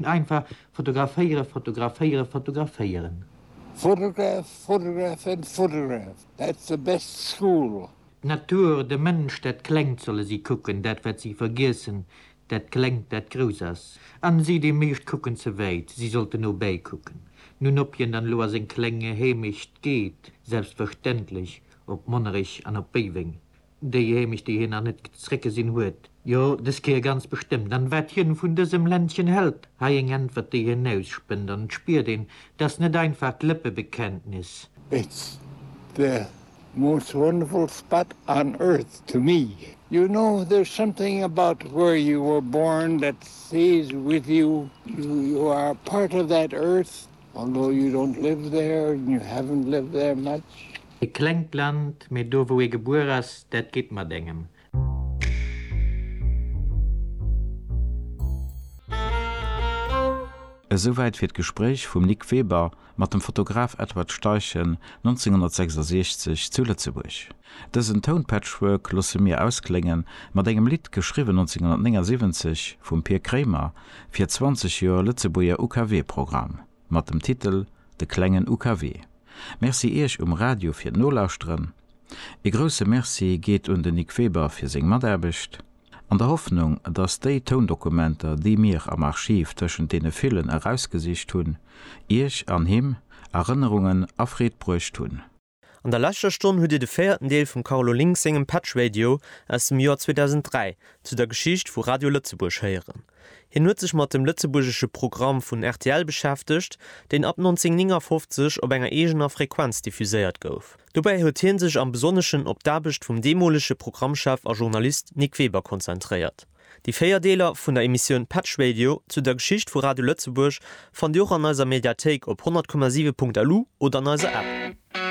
Einfach fotograféieren, fotograféieren, fotograféieren. Photograph, photograph and photograph, that's the best school. D'Natur, de Mënsch, dat Klengt solle si kucken, dat wat si vergiessen, dat Klengt, dat grouss ass. An si, déi meescht, kucken ze wäit, si sollten no bäi kucken, nun op hien dann elo a seng kleng Heemecht geet, selbstverständlech op Monnerech an op Béiweng. Déi Heemecht, déi hien nach net zréckgesinn huet? Jo, dës Kéier ganz bestëmmt. An wat hien vun dësem Ländchen hält? Hei eng Äntwert, déi hien ausspënnt, an et spiert een, et ass net einfach d'Lëppebekenntnis. It's the most wonderful spot on earth to me. You know, there's something about where you were born that stays with you. You are a part of that earth, although you don't live there and you haven't lived there much. E klengt Land, mee do wou ee gebuer ass, dat geet mat engem. Esouwäit fir d'Gespréich vum Nic Weber mat dem Fotograf Edward Steichen 1966 zu Lëtzebuerg. Dësen Tounpatchwork loosse mir ausklénge mat engem Lidd, geschriwwen 1979 vum Pir Kremer fir 20 Joer Lëtzebuerger UKW-Programm. mat dem Titel De klengen UKW. Merci Iech um Radio fir d'Nolauschteren. Ee grousse Merci geet un den Nic Weber fir seng Mataarbecht. An der Hoffnung, dass déi Toundokumenter, déi mir am Archiv tëschent deene villen erausgesicht hunn, Iech an him Erënnerungen a Freed bruecht hunn. An der leschter Stonn hutt Dir de véierten Deel vum Carlo Link sengem Patch Radio aus dem Joer 2003 zu der Geschicht vu Radio Lëtzebuerg héieren. Hien huet sech mat dem lëtzebuergesche Programm vun rtl beschäftegt, deen ab 1959 op enger eegener Frequenz diffuséiert gouf. Dobäi huet hie sech am Besonneschen op d'Aarbecht vum deemolege Programmchef a Journalist Nic Weber konzentréiert. Déi véier Deeler vun der Emissioun Patch Radio zu der Geschicht vu Radio Lëtzebuerg fannt Dir och an eiser Mediathéik op 100,7.lu oder an eiser App.